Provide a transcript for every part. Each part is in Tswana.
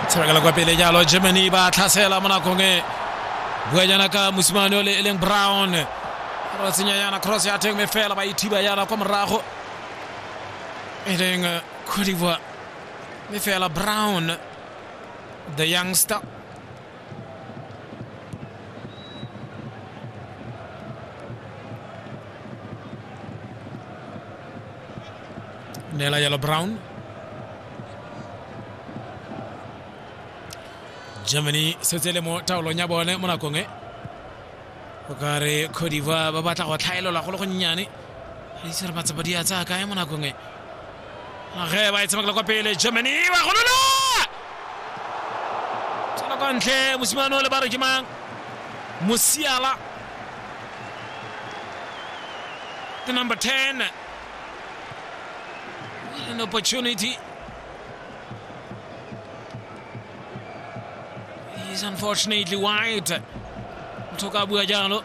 tshabakela kwa pele jalo germany ba tlhasela mo nakong e bua jana ka mosimane o le e leng brown ra tsenya yana cross ya teng me fela ba ithiba yana kwa morago e leng eh, cote d'ivoire me fela brown the youngster nee la Yellow Brown Germany setsele mo taolong ya bone mo nakong e o ka re Cote d'Ivoire ba batla go tlhaelola go le gonnyane re itse re matsapa di a tsaya kae mo nakong e ge ba e tshamekela kwa pele germany e ba golola tswela kwa ntle mosimane o le ba re ke mang mosiala the number 10 What an opportunity is unfortunately wide motho ka bua jalo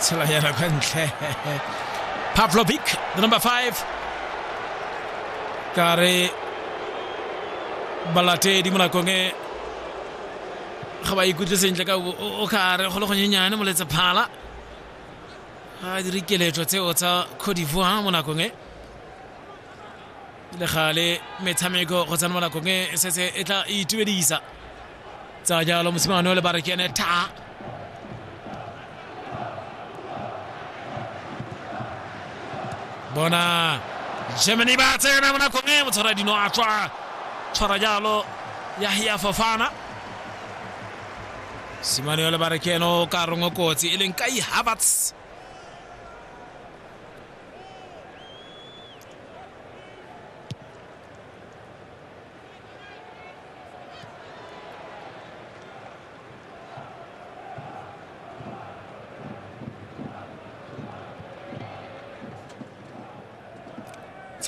Tsela yana kwa ntle. Pavlovic, the number five. Ka re balatedi mo nakong e ga ba ikutlwe sentle ka o- o o ka re go le gonyenyane moletse phala ga a dire keletso tseo tsa cote d'ivoire mo nakong e le gale metshameko go tsena mo nakong e, e setse e tla e itumedisa tsa jalo mosimane o le ba re ke ene tha bona germany ba tsena mo nakong e motshwara dino a tswa tshwara jalo yahia fofana simane o le ba re ke ene o ka rongwe kotsi e leng kai havertz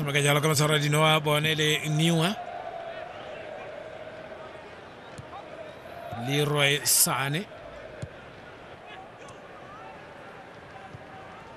tshameka jalo ka matshwaro a dinoa bone le newa leroy sane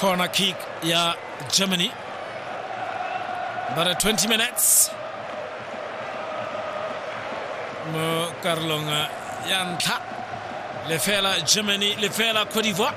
Corner kick ya Germany. Baada ya 20 minutes mo karolong ya ntlha lefela Germany lefela Cote d'Ivoire